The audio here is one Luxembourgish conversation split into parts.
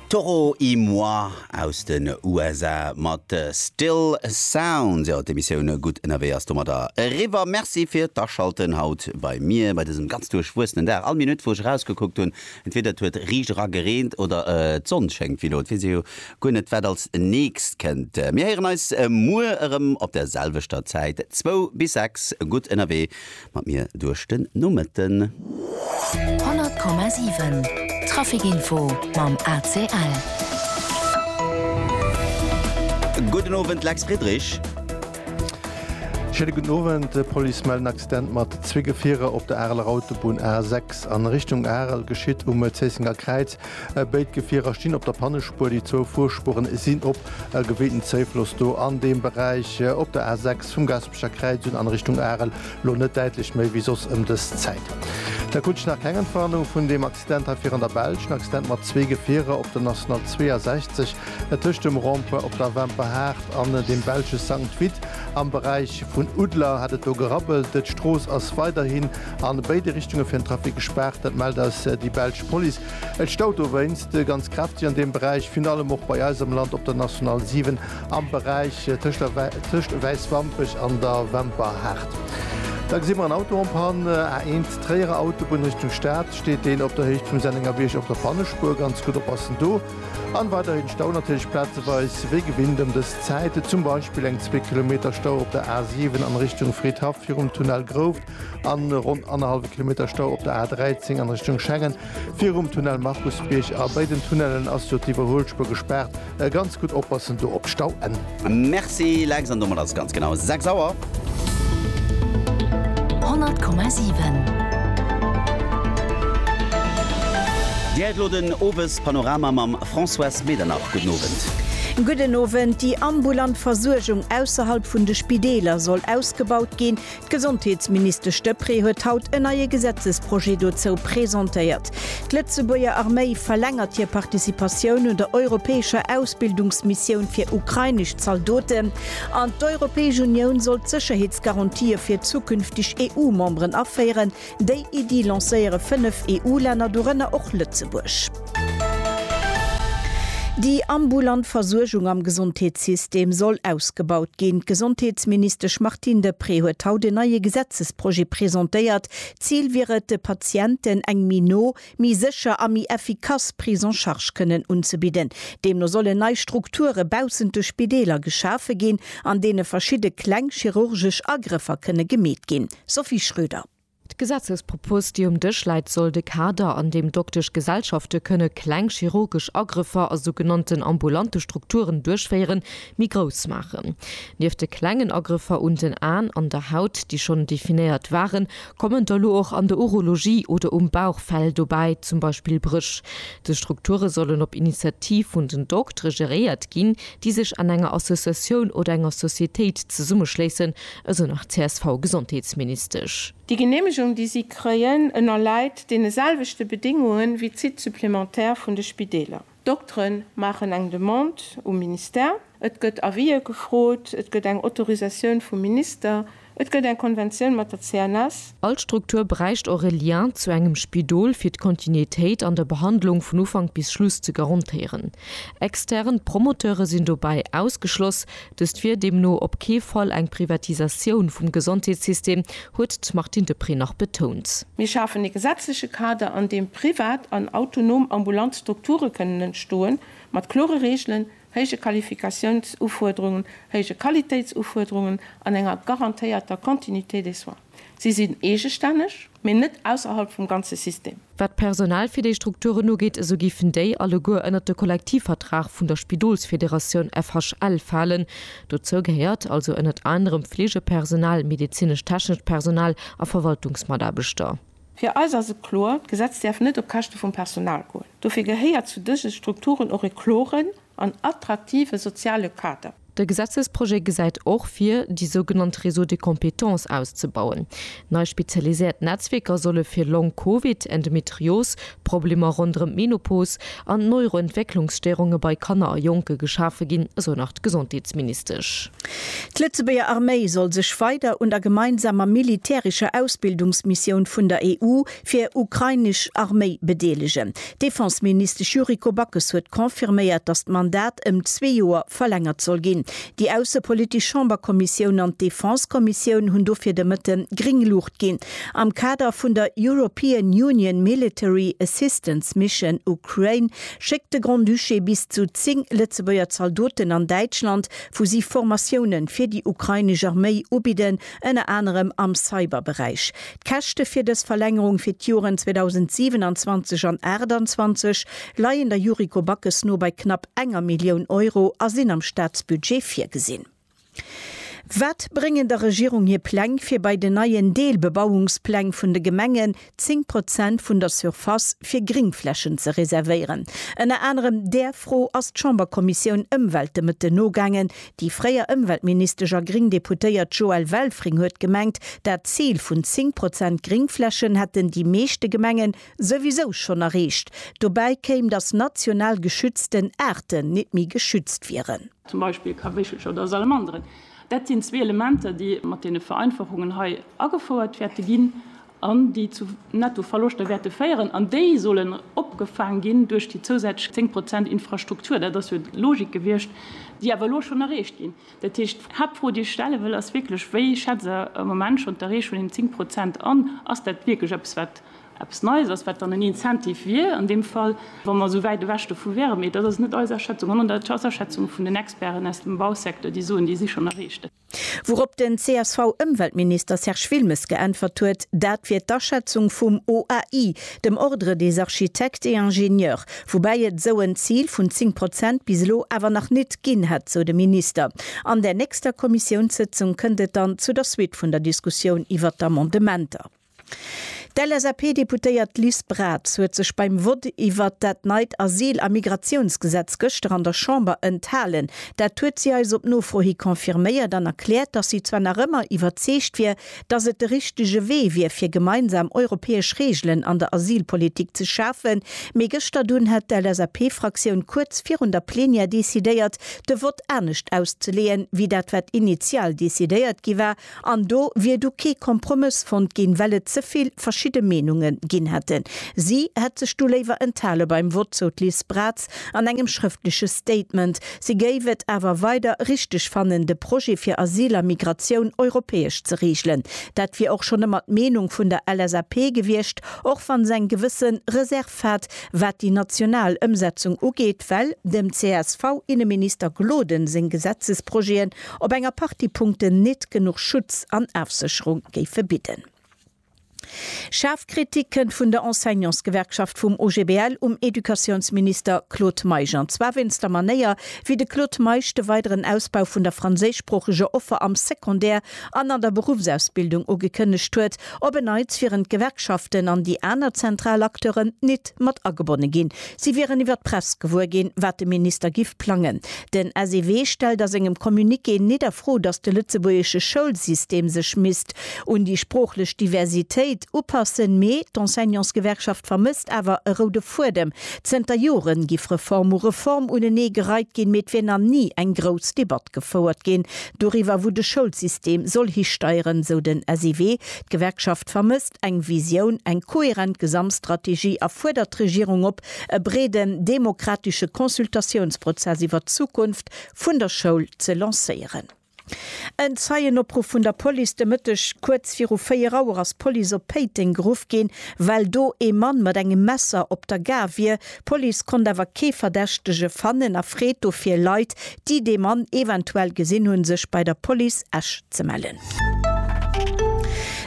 Toro y Moi aus den USA mat Still Sounds. Jo, d'Emissioun Gutt ënnerwee ass domadder eriwwer. Merci fir d'Aschalten haut bei mir bei dësem ganz duerchwuessenen Dag. All Minutt wou ech erausgekuckt hunn, entweeder et huet riicht era gereent oder d'Sonn schéngt wéi elo. Et weess ee jo guer net wat als nächst kënnt. Mir héieren eis muer erëm op der selwechter Zäit, zwou bis sechs. Gutt ënnerwee. mat mir duerch den Nomëtten. 100,7 Traficinfo mam ACL. Gudden Owend Lex Friedrich. Schéine gudden Owend. D'Police mellt en Accident mat zwee Gefierer op der Areler Autobunn A 6 an Richtung Arel. Geschitt um Zéissenger Kräiz. Béid Gefierer stinn op der Pannespuer. Déi zwou Fuerspueren sinn op. Gewéinten Zouffloss do an deem Beräich op der A 6 vum Gast. D'Escher Kräizung an Richtung Arel lo net däitlech méi wéi soss ëm dës Zäit. Da krut ech nach keng Entwarnung vun deem Accident hei virun der Belsch, en Accident mat zwee Gefierer op der National 62 tëscht dem Rond-point op der Wemperhaart an dem belsche Sankt Vith. Am Beräich vun Uddler hat et do gerabbelt. D'Strooss ass weiderhin an béide Richtunge fir den Trafic gespaart, dat mellt eis déi belsch Police. Et staut dowéinst ganz kräfteg an deem Beräich, virun allem och bei eis am Land op der National 7 am Beräich tëscht tëscht Wäiswampech an der Wemperhaart. Da gesi mer en Auto en panne, A1 Tréierer Autobunn Richtung Stad, steet deen op der Héicht vum Sennengerbierg op der Pannespuer. Ganz gutt oppassen do. An weiderhin Stau natierlech plazeweis wéi gewinnt ëm dës Zäit, zum Beispill eng zwee Kilometer Stau op der A7 an Richtung Fridhaff virum Tunnel Grouft an ronn annerhallwe Kilometer Stau op der A13 an Richtung Schengen virum Tunnel Markusbierg. A béiden Tunnellen ass jo d'Iwwerhuelspuer gespaart. Ganz gudd oppassen do op Stauenn. Merci Lex, an domat ass et ganz genau 6 Auer. 100,7. Dir hëiert elo den Owespanorama mam Françoise Medernach. Gudden Owend. Gudden Owend. Déi ambulant Versuergung ausserhalb vun de Spideeler soll ausgebaut ginn. D'Gesondheetsministesch Deprez huet haut en neie Gesetzesprojet dozou presentéiert. D'Lëtzebuerger Arméi verlängert hir Participatioun un der europäescher Ausbildungsmissioun fir ukrainesch Zaldoten an d'Europäesch Unioun soll d'Sécherheetsgarantië fir zukünfteg EU-Memberen aféieren, Déi Iddi lancéiere fënnef EU-Länner, dorënner och Lëtzebuerg. Déi ambulant Versuergung am Gesondheetssystem soll ausgebaut ginn. D'Gesondheetsministesch Martine Deprez huet haut en neie Gesetzesprojet presentéiert. D'Zil wier et, de Patienten eng méi no, méi sécher a méi effikass Prise en charge kënnen unzebidden. Deemno sollen nei Strukture baussent de Spideeler geschafe ginn, an deene verschidde kleng chirurgesch Agrëffer kënne gemeet ginn. Sophie Schröder. D'Gesetzespropos, déi um Dësch läit, soll de Kader, an deem doktesch Gesellschafte kënne kleng chirurgesch Agrëffer a sougenannten ambulante Strukturen duerchféieren, méi grouss maachen. Nieft de klengen Agrëffer un den Aen an der Haut, déi schonn definéiert waren, kommen der elo och an der Urologie oder um Bauch Fäll dobäi, zum Beispill Bréch. Dës Strukture sollen op Initiativ vun den Doktere geréiert ginn, déi sech an enger Associatioun oder enger Societéit zesummeschléissen, esou nach d'CSV-Gesondheetsministesch. Déi Geneemegung, déi si kréien, ënnerläit deene selwechte Bedingunge wéi d'Sites supplémentaires vun de Spideeler. D'Doktere maachen eng Demande um Ministère, et gëtt Avisë gefrot, et gëtt eng Autorisatioun vum Minister, et gëtt eng Konventioun mat der CNS, All Struktur bräicht och e Lien zu engem Spidol fir d'Kontinuitéit an der Behandlung vun Ufank bis Schluss ze garantéieren. Extern Promoteure sinn dobäi ausgeschloss. Dëst wier deemno op kee Fall eng Privatisatioun vum Gesondheetssystem, huet d'Martine Deprez nach betount. Mir schafen e gesetzleche Kader, an deem privat an autonom ambulant Strukture kënnen entstoen, mat klore Reegelen, héije Qualifikatiounsufuerderungen, héije Qualitéitsufuerderungen an enger garantéierter Continuité des soins. Si sinn eegestänneg, mee net ausserhalb vum ganze System. Wat d'Personal fir déi Strukturen ugeet, esou géifen déi alleguer ënnert de Kollektivvertrag vun der Spidolsfederatioun FHL falen. Dozou gehéiert also ënnert anerem Fleegepersonal, medezinesch-technescht Personal a Verwaltungsmataarbechter. Fir eis ass et kloer, d'Gesetz däerf net op Käschte vum Personal goen. Dofir gehéiert zu dëse Strukturen och e kloren an attraktive soziale Kader. De Gesetzesprojet gesäit och vir, déi sougenannt Réseaux de compétences auszebauen. Nei spezialiséiert Netzwierker solle fir Long-Covid, Endometrios, Problemer ronderëm d'Menopos an d'Neuroentwécklungsstéirunge bei Kanner a Jonke geschafe ginn, esou nach d'Gesondheetsministesch. D'Lëtzebuerger Arméi soll sech weider un der gemeinsamer militärescher Ausbildungsmissioun vun der EU fir ukrainesch Arméi bedeelegen. D'Defenseministesch Yuriko Backes huet confirméiert, datt d'Mandat ëm zwee Joer verlängert soll ginn. Déi aussepolitesch Chamberkommissioun an d'Defensekommissioun hunn dofir de Mëtte gréng Luucht ginn. Am Kader vun der European Union Military Assistance Mission Ukraine schéckt de Grand-Duché bis zu 10 Lëtzebuerger Zaldoten an Däitschland, wou si Formatioune fir déi ukrainesch Arméi ubidden, ënner anerem am Cyber-Beräich. D'Käschte fir dës Verlängerung fir d'Joren 2027 an 28 leien der Yuriko Backes no bei knapp enger Millioun Euro a sinn am Staatsbudget virgesinn. Wat bréngen der Regierung hir Pläng, fir bei den neien Deelbebauungspläng vun de Gemengen 10 Prozent vun der Surface fir Gringflächen ze reservéieren? Ënner anerem där Fro ass d'Chamberkommissioun Ëmwelt de Mëtten nogaangen. Déi fréier Ëmweltministesch a gring Deputéiert Joëlle Welfring huet gemengt, dat Zil vun 10 Prozent Gringflächen hätten déi meeschte Gemengen souwisou schonn erreecht. Dobäi kéim, datt national geschützten Aarten net méi geschützt wieren. zum Beispill Kaweechelcher oder Salamanderen, dat sinn zwee Elementer, déi mat deene Vereinfachungen hei agefouert wäerte ginn an déi zu Nettoverloschter wäerte féieren. An déi sollen opgefaang ginn duerch déi zousätzlech zéng Prozent Infrastruktur. Dat ass jo d'Logik gewiescht, déi awer elo schonn erreecht ginn. Dat heescht, d'Haaptfro, déi ech stelle wëll, ass wierklech, Wéi schätzt Der am Moment schonn d'Erreechung vun deenen zéng Prozent an? Ass dat wierklech eppes, wat Eppes Neies ass, wat dann en Incentive wier an deem Fall, wa mer esou wäit ewech dovu wäeren. Mee dat ass net eis Aschätzung, sondern dat ass d'Aschätzung vun den Experten aus dem Bausecteur, déi soen, déi si schonn erreecht. Wourop den CSV-Ëmweltminister Serge Wilmes geäntwert huet, dat wier d'Aschätzung vum OAI, dem Ordre des architectes et ingénieurs, woubäi et esou en Zil vun 10 Prozent bis elo awer nach nit ginn hätt, sou de Minister. An där nächster Kommissiounssëtzung kënnt et dann zu der Suite vun der Diskussioun iwwert d'Amendementer. D'LSAP-Deputéiert Liz Braz huet sech beim Vott iwwert dat neit Asyl a Migratiounsgesetz gëschter an der Chamber enthalen. Dat huet si eis op Nofro hi confirméiert an erkläert, datt si zwar nach ëmmer iwwerzeegt wier, datt et de richtege Wee wier fir gemeinsam europäesch Reegelen an der Asylpolitik ze schafen, mee gëschter dunn hätt d'LSAP-Fraktioun kuerz virun der Plenière decidéiert, de Vott anescht auszeleeën, wéi dat wat initial decidéiert gi war. An do wier du kee Kompromëss fonnt ginn, well et ze vill verschidde Meenunge ginn hätten. Si hätt sech du léiwer enthale beim Vott, sou d'Liz Braz an engem schrëftleche Statement. Si géif et awer weider richteg fannen, de Projet fir Asyl a Migratioun europäesch ze reegelen. Dat wier och schonn ëmmer d'Meenung vun der LSAP gewiescht, och wann se eng gewësse Reserv hat, wat déi national Ëmsetzung ugeet, well dem CSV-Inneminister Gloden seng Gesetzesprojeten op enger Partie Punkten nit genuch Schutz an Afsécherung géife bidden. Schaarf Kritik kënnt vun der Enseignantsgewerkschaft vum OGBL um Educatiounsminister Claude Meisch an zwar wéinst der Manéier, wéi de Claude Meisch de weideren Ausbau vun der franséischsproocheger Offer am Secondaire an an der Beruffsausbildung ugekënnegt huet Op en Neits wieren d'Gewerkschaften an déi aner zentral Acteuren nit mat agebonne ginn. Si wieren iwwer d'Press gewuer ginn, wat de Minister giff plangen. Den SEW stellt a sengem Communiqué nit a Fro, datt de lëtzebuergesche Schoulsystem sech misst un déi sproochlech Diversitéit upassen, mee d'Enseignantsgewerkschaft vermësst awer e roude Fuedem. Zënter Jore giff Reform u Reform unenee gereit ginn, mee et wier nach ni eng grouss Debatt gefouert ginn, Doriwwer wou de Schoulsystem soll histeieren, sou den SIW. D'Gewerkschaft vermësst eng Visioun, eng koherent Gesamtstrategie a fuerdert d'Regierung op, e breeden demokratesche Consultatiounsprozess iwwer d'Zukunft vun der Schoul ze lancéieren. En Zeienopruff vun der Police de Mëtteg kuerz viru 4 Auer ass d'Police op Péiteng geruff ginn, well do ee Mann mat engem Messer op der Gare wier, D'Police konnt awer kee Verdächtege fannen a freet dofir Leit, déi dee Mann eventuell gesinn hunn, sech bei der Police Esch ze mellen.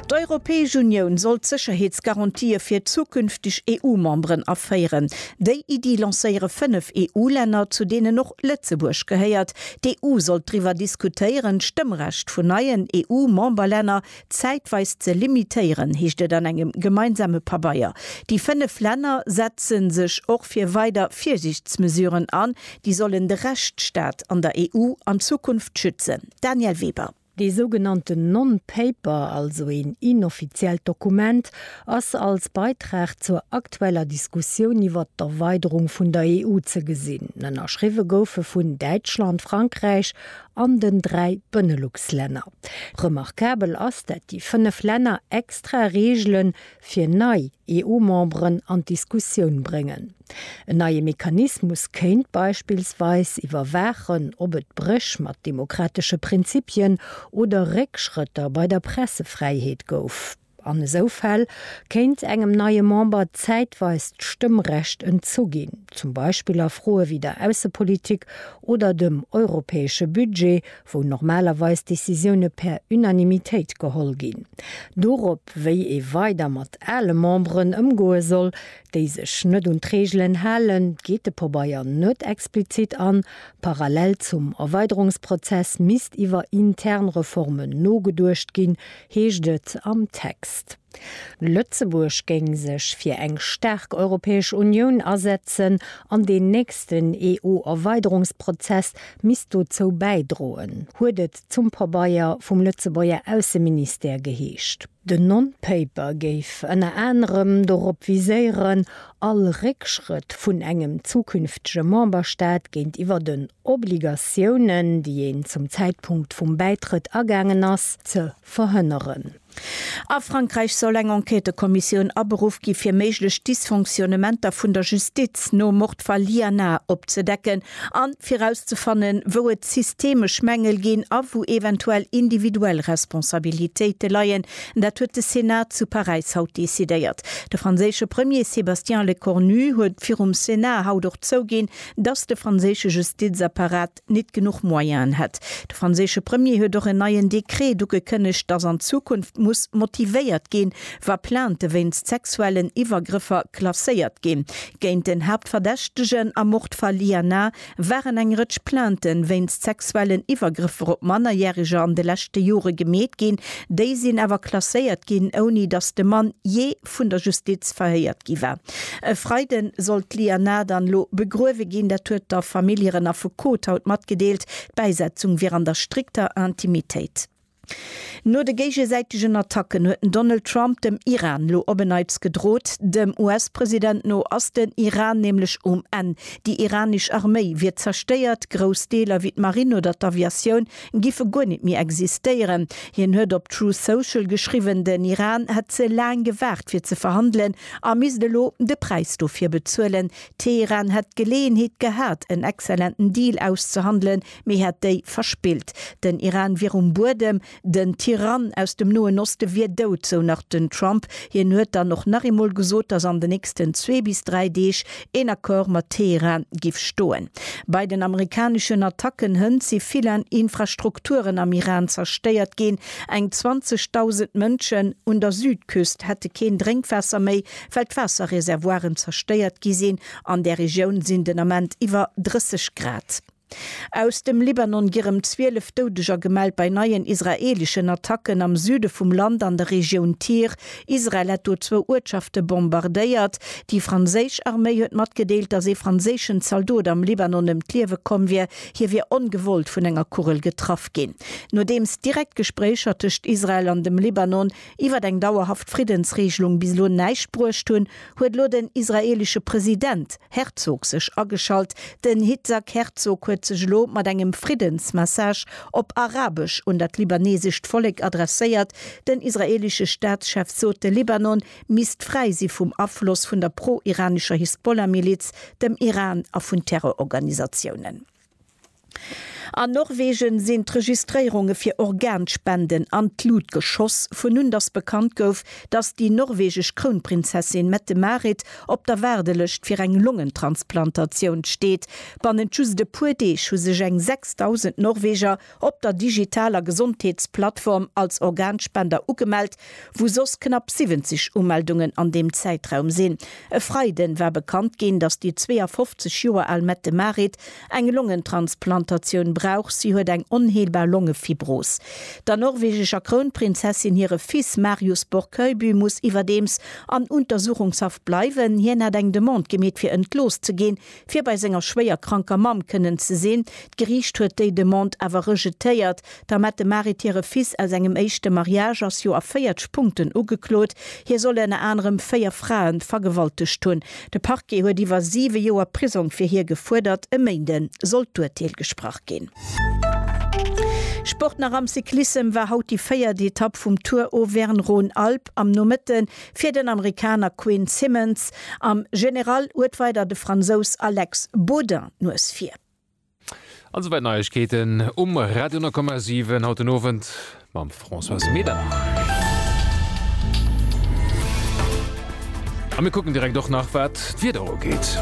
D'Europäesch Unioun soll d'Sécherheetsgarantië fir zukünfteg EU-Memberen aféieren. Déi Iddi lancéiere fënnef EU-Länner, zu deenen och Lëtzebuerg gehéiert. D'EU sollt driwwer diskutéieren, d'Stëmmrecht vun neien EU-Memberlänner zäitweis ze limitéieren, heescht et an engem gemeinsame Pabeier. Déi fënnef Länner setze sech och fir weider Virsiichtsmesuren an, déi sollen de Rechtsstaat an der EU an Zukunft schützen. Danièle Weber. Dee sougenannten Non-Paper, also een inoffiziellt Dokument, ass als Beitrag zur aktueller Diskussioun iwwert d'Erweiderung vun der EU ze gesinn. Ënnerschriwwe gouf e vun Däitschland, Frankräich an den dräi Benelux-Länner. Remarkabel ass, dat déi fënnef Länner extra Reegele fir nei EU-Memberen an d'Diskussioun bréngen. En neie Mechanismus kéint beispillsweis iwwerwaachen, ob et Bréch mat demokratesche Prinzipien oder Réckschrëtter bei der Pressefräiheet gouf. An esou Fäll kéint engem neie Member zäitweis d'Stëmmrecht entzu ginn, zum Beispill a Froe wéi der Aussepolitik oder dem europäesche Budget, wou normalerweis Decisioune per Unanimitéit geholl ginn. Dorop, wéi ee weider mat ale Memberen ëmgoe soll, déi sech net un d'Reegelen halen, geet de Pobeier net explizit an. Parallel zum Erweiderungsprozess misst iwwer intern Reformen nogeduecht ginn, heescht et am Text. Lëtzebuerg géing sech fir eng staark Europäesch Unioun asetzen an deen nächsten EU-Erweiderungsprozess misst dozou bäidroen, huet et zum Pabeier vum Lëtzebuerger Ausseministère geheescht. Den Non-Paper géif ënner anerem dorop viséieren, All Réckschrëtt vun engem zukünftege Memberstaat géintiwwer den Obligatiounen, déi een zum Zäitpunkt vum Bäitrëtt agaangen ass, ze verhënneren. A Frankräich soll eng Enquêtëkommissioun aberuff gi fir méiglech Dysfonctionnementer vun der Justiz nom Mordfall Liana opzedecken a fir erauszefannen, wou et systemesch Mängel ginn a wou eventuell individuell Responsabilitéite leien. Dat huet de Senat zu Paräis haut decidéiert. De franséische Premier Sébastien Lecornu huet virum Senat haut och zouginn, datt de franséische Justizapparat nit genuch Moyenen hätt. De franséische Premier huet och en neien Dekret ugekënnegt, datt an Zukunft muss motivéiert ginn, wa Plainte wéinst sexuellen Iwwergrëffer klasséiert ginn. Géint den Haaptverdächtegen am Mord Faliana waren eng Rëtsch Plainte wéinst sexuellen Iwwergrëffer op Mannerjäreger an de leschte Jore gemeet ginn. Déi sinn awer klasséiert ginn, ouni datt de Mann jee vun der Justiz verhéiert gi war. E Freide soll d'Lianah dann elo begruewe ginn. Dat huet der Famill hiren Affekot haut matgedeelt. D'Bäisetzung wier an der strikter Intimitéit. No de géigesäitegen Attacken huet den Donald Trump dem Iran lo op en Neits gedrot. Dem US-President no ass den Iran nämlech um Enn. Déi iranesch Arméi wier zerstéiert, grouss Deeler wéi d'Marinn oder d'Aviatioun giffe guer net méi existéieren. Hien huet op Truth Social geschriwwen, den Iran hätt ze laang gewaart fir ze verhandelen a misst elo de Präis dofir bezuelen. Teheran hätt d'Geleeënheet gehat en exzellenten Deal auszehandelen, Mee hätt déi verspillt. Den Iran wier um Buedem, den Tyrann aus dem Noen Oste wier dout, sou nach den Trump. Hien huet dann och nach eemol gesot, datt an den nächsten zwee bis dräi Deeg een Accord mat Teheran giff stoen. Bei den amerikaneschen Attacken hënt si vill Infrastrukturen am Iran zerstéiert ginn. Eng 20.000 Mënschen un der Südküst hätte keen Drénkwaasser méi, well d'Waasserreservoiren zerstéiert gi sinn. An där Regioun sinn den Ament iwwer 30 Grad. Aus dem Libanon gi rem 12 Doudeger gemellt bei neien israeeleschen Attacken am Süde vum Land an der Regioun Tyr. Israel hätt do zwou Uertschafte bombardéiert. Déi franséisch Arméi huet matgedeelt, datt ee franséischen Zaldot am Libanon ëm d'Liewe komm wier. Hie wier ongewollt vun enger Kugel getraff ginn. Nodeems direkt Gespréicher tëscht Israel an dem Libanon iwwer eng dauerhaft Friddensregelung bis elo näischt bruecht hunn, huet elo den israeelesche President, Herzog sech ageschalt. Den Hitzag Herzog huet sech elo mat engem Friddensmessage op Arabesch un dat libanesescht Vollek adresséiert. Den israeelesche Staatschef sot, de Libanon misst fräi si vum Afloss vun der pro-iranescher Hisbollah-Miliz, dem Iran a vun Terrororganisatiounen. An Norwegen sinn d'Registréierunge fir Organspenden an d'Lut geschoss, vun un datt bekannt gouf, datt déi norwegesch Krounprinzessin Mette-Marit op der Waardelëscht fir eng Longentransplantatioun steet. Bannent just e puer Deeg hu sech eng 6.000 Norweger op der digitaler Gesondheetsplattform als Organspender ugemellt, wou soss knapp 70 Umeldungen an deem Zäitraum sinn. E Freiden war bekannt ginn, datt déi 52 Joer al Mette Marit eng Longentransplantatioun brauch. Si huet eng onheelbar Longefibros. Der norwegescher Krounprinzessin hire Fils Marius Borchøyby muss iwwerdeems an Untersuchungshaft bleiwen. Hien hat eng Demande gemeet fir entlooss ze ginn. fir bei senger schwéier kranker Mamm kënnen ze sinn. D'Geriicht huet déi Demande awer rejetéiert. D'Amette Marit hire Fils aus engem éischte Mariage ass jo a 40 Punkten ugeklot. Hie soll ënner anerem véier Frae vergewaltegt hunn. De Parquet huet iwwer siwe Joer Prisong fir hie gefuerdert. E Méinde soll d'Urteel gesprach ginn. Sport nach am Cyclissem war haut déi véiert Etapp vum Tour Auvergne-Rhône-Alpes am Nomëtten. Fir den Amerikaner Quinn Simmons am General huet weider de Fransous Alex Baudin d'Nues vir. An souwäit Neiegkeeten um Radio 9,7 haut den Owend mam Françoise Medernach. A mir kucken direkt och nach wat Wat d'Wieder ugeet.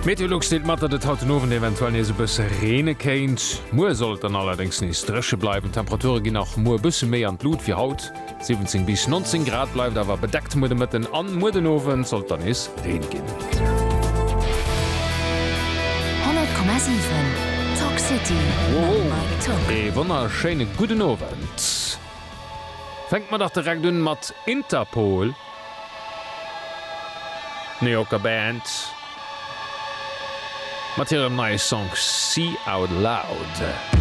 Meteolux deelt mat, datt et haut den Owend eventuell nees e bësse reene kéint. Muer soll et dann allerdéngs nees dréche bleiwen. D'Temperature ginn nach muer e bësse méi an d'Lut wéi haut. 17 bis 19 Grad, bleift awer bedeckt muer de Mëtten an muer den Owend sollt dann nees Reen ginn. 100,7 Talk City mam Mike Tock. Ee wonnerschéine gudden Owend. Fänke mer dach direkt un mat Interpol, New Yorker Band, mat hirem neie Song Sea Out Loud.